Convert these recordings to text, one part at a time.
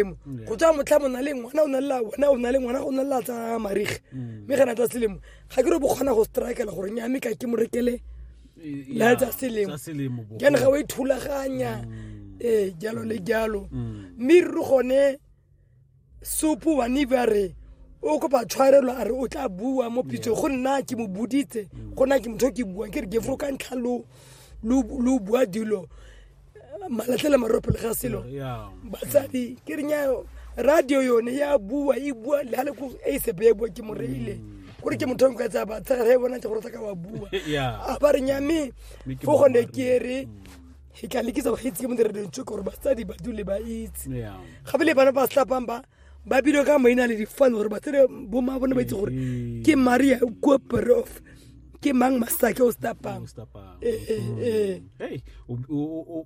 selemo go tswa motlha mo na le ngwana o na lela wena o na le ngwana go na lela tsa marige mm. mme ga na tsa selemo ga ke re bo kgona go strikela gore nya mme ka ke mo rekele la tsa selemo jane ga o e thulaganya mm. ee jalo le jalo mm. mme re gone sopo wa neve a re o kopa tshwarelo a re o tla bua mo pitsong go nna ke mo boditse go nna ke motho ke buang ke re gefro ka ntlha lo bua dilo malatlhela maroro pele ga selo Yeah. batsadi ke reng ya radio yone ya bua e bua le gale ko e sepe ya bua ke mo reile gore ke motho ka tsaya batsadi re bona tse gore tla ka wa bua Yeah. a ba reng ya me Mme ke fo gone boammaaruri. ke re e ka lekisa go itse ke mo dire dintso gore batsadi ba dule ba itse Yeah. gape le bana ba slapang ba ba bile ka maina le difane gore ba tsere boma bone ba itse gore mm-hmm. ke maria kua perof ke mang masake o stapang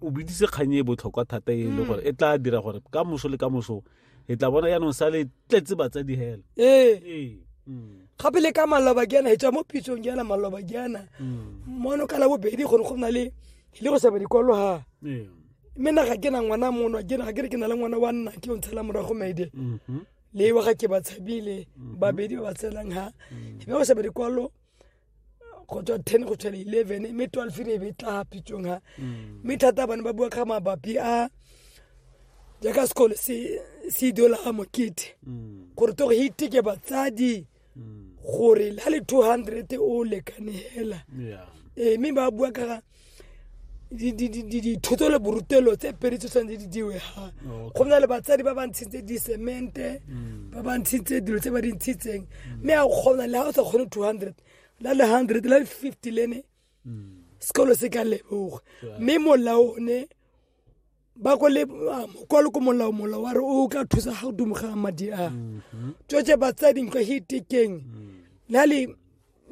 o bidise kgang e botlhokwa thata e le mm. gore e tla dira gore ka moso le ka moso e tla bona yaanong sa le tletse batsadi hela ee mm. gape le ka maloba ke yana e tswa mo pitsong ke yana maloba ke yana mm. mono ka la bobedi gore go na le le go seba dikolo ha mme naga ke na ngwana mono ke naga ke re ke na le ngwana wa nna ke o ntshela morago maide mhm. le wa ga ke ba tshabile mhm. babedi ba ba tshelang ha mhm. mme go sa bedi kwalo go tswa ten go tshwela eleven mme twelve re be tla pitsong ha mme thata bane ba bua ka mabapi a jaaka sekolo se idola ga mokete gore to go hiteke batsadi mm. hmm. gore la le 200 o lekane hela ee mme ba bua ka dithoto le borutelo tse pedi tse tshwanetse di diwe ga go na le batsadi ba ba ntshitse disemente hmm. ba ba ntshitse dilo tse ba di ntshitseng hmm. mme a kgona le ga o sa kgone 200 la le 100 la le 50 lene sekolo se ka leboga mme molao one ba ko le kwa le ko molao molao wa re o ka thusa ga o dumoga madi a mhm. tsotse batsadi nkwa he tekeng mm. na le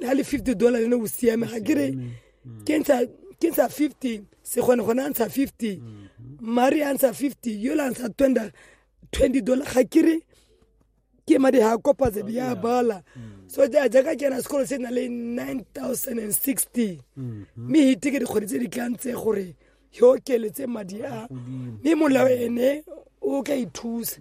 na le 50 dollar le ne o siame ga kere mm. ke ntsha ke ntsha 50 se gone gone a ntsha 50 mhm. mari a ntsha 50 yola a ntsha 20 dollar ga kere ke madi ha kopa tse di a bala mm. so jaaka ke na sekolo se na le 9060 mm-hmm. mme hite ke dikgwedi tse di tlang tse gore ke okeletse madi a mme molao ene o ka ithusa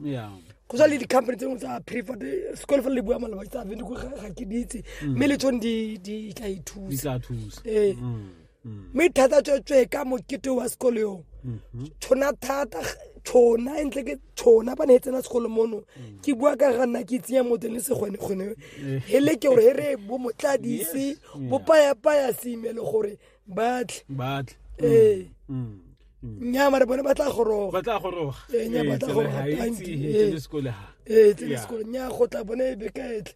go sa le di-company tse dingwe tsa prefer sekolo fa le bua malaba tsa ventiko ga ke ditse mm. mme le tsone di tla ithusa ee mm. mm. mme thata tswetswe ka mokete wa sekolo yo mm-hmm. tshona thata tshona entle ke tshona ba ne e tsena segolo mono mm. ke bua ka ga nna ke tsenya motho le segone gone eh. hele ke gore he re bo motladise bo payapaya seimele gore batle batle ee nya mare bone ba tla goroga ba tla goroga ee nya ba tla goroga tanki ee tsene sekolo nya go tla bone e bekaetle